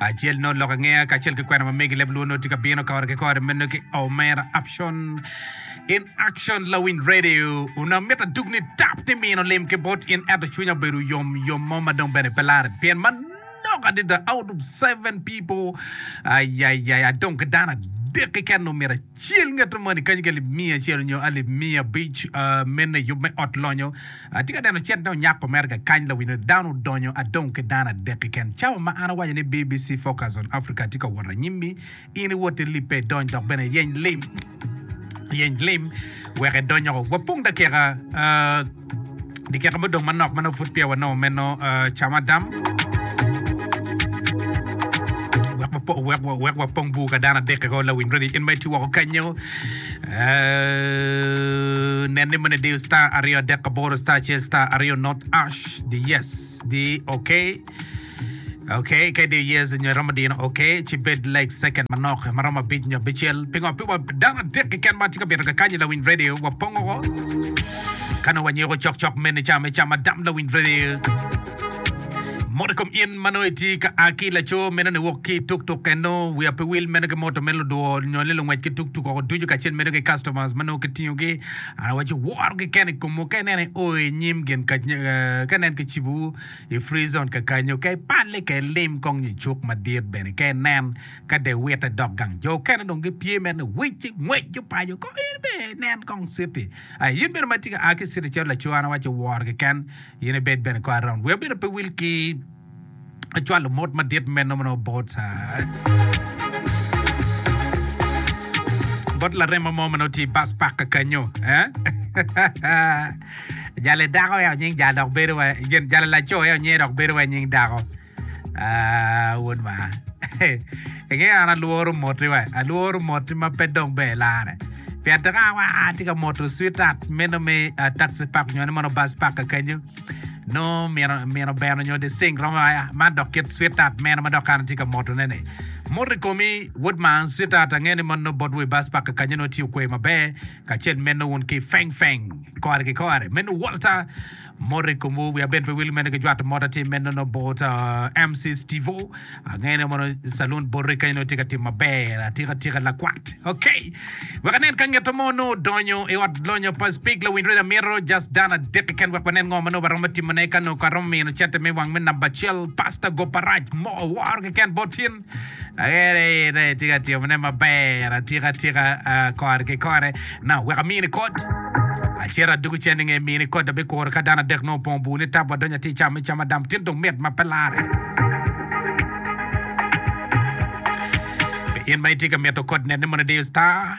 Acel nongo lok angeya kacel ki kwena ma megi leb luo nongo tye ka bino kore ki kore meno ki Omera Aption in action lawiny radio onongo amito adug ni tap ni mino lim ki bot in ento cwinya obedo yom yom mo ma dong bene pe larre pien manok adada out of seven people ayayaya adong ki dano adek keken omyero Cel ngeto moni kany ki alip miya acel nyo alip miya abic me neyub me ot lonyo. Atye ka neno cente onyako mere kakany lawino ni dano odonyo adong ki dano adek keken. Cawa ma an awaco ni BBC Focus on Africa tye ka wot anyim-mi, in iwot ilibbe idony dok bene iyeny lim, iyeny lim wek idonyoko. Wapong dakika. I kika mudong manok ma nongo pud peya wanongo meno, cam Adam wek wapong bur ka dano adek keken lawiny redi in ma itye woko kenyo nen ni moni diyo star aryo adek aboro star acel star aryo not ash di yes di okay Ok, kadi yes nyo romo dino. Ok, ci bed like second manok ma romo abic nyo abicel. Pingo pi wa dano adek keken ma tye ka bito kakanyi lawiny radio wa pongo ko. Kano wa nyeko chok chok mene cha me cha madam lawiny radio. Moto kom in mano iti ka aki laco meno ni wok ki tuk tuk eno wia pe wil meno ki moto me ludwo nyo ni lungwec ki tuk tuk oko ducu kacel meno ki customers mano kitingo gi ana waci woro gi kene kom ka inene o i nyim gin ka eh, ka nen ki cibu I Free Zone kakanyo, ka ipalle, ka ilim kong nyo icuk madit bene, ka inen ka dye witte dok gang, jo okene dong gipye mere ni wic ci ngwec gipaco kong. In bene inen kong citi. Ai, in bene ma itye ka a ki i citi calo laco, an awaco woro keken, in ibed bene kong around. Wi abedo pe wil ki acwalo mot madit meno ma nongo bot bot larema mo ma nongo tye i bus park kakanyo. Jali dako aye onying jal dok bedo wa gen jali laco aye onyinge dok bedo wa nying dako ah wod maa inge an alworo moti wa alworo moti ma pe dong ber ilare pien tek a wa atye ka moto sweetheart meno me ah, taxi park nyo ni mono bus park kakenyo no mino mino beno nyo the sing romo ah, man dok kit sweetheart meno ma dok an atye ka moto ne ni moto i komi wod man sweetheart ange ni mono bot wa i bus park kakenyo no tye okwe maber Kacel meno wun ki feng feng kore ki kore meno Walter moti komwu wi abed pe wil meno ki jwato mot atye meno no bot MC Stevo angeyo ne mono salun boti kany no tye ka timo maber atika tika lakwat ok wek anen ka ngeto mo no odonyo i ot lonyo pa speak lawiny radio amito just dano adek keken wek wanen ngo mano waromo timone ka no ka romo mino cente me wang me namba acel pastor Goparac mo woro keken bot in Ayere in aye itye ka timone maber atika atika ah, kore ki kore na wek amini kod acito adugu cen inge mini kod abikuro ka dano adek nongo opong bur ni tap wadonyo ati cam me cam adam tin dong mit ma pe lare Pi in ma itye ka mito kod nene mono idiyo star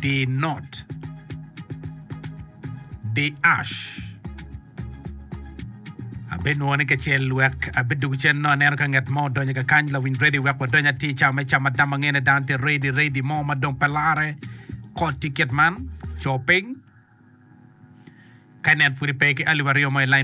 Di not. Di ash. Abenwongo ni kacel wek abidug cen no aneno ka ngat mo odonyo ka kany lawiny redi wek wadony atir ca me cam adam angene dano tye redi redi mo ma dong pe lare kot tiket man co piny ka nen pwodi pe ki alip aryo mo i lain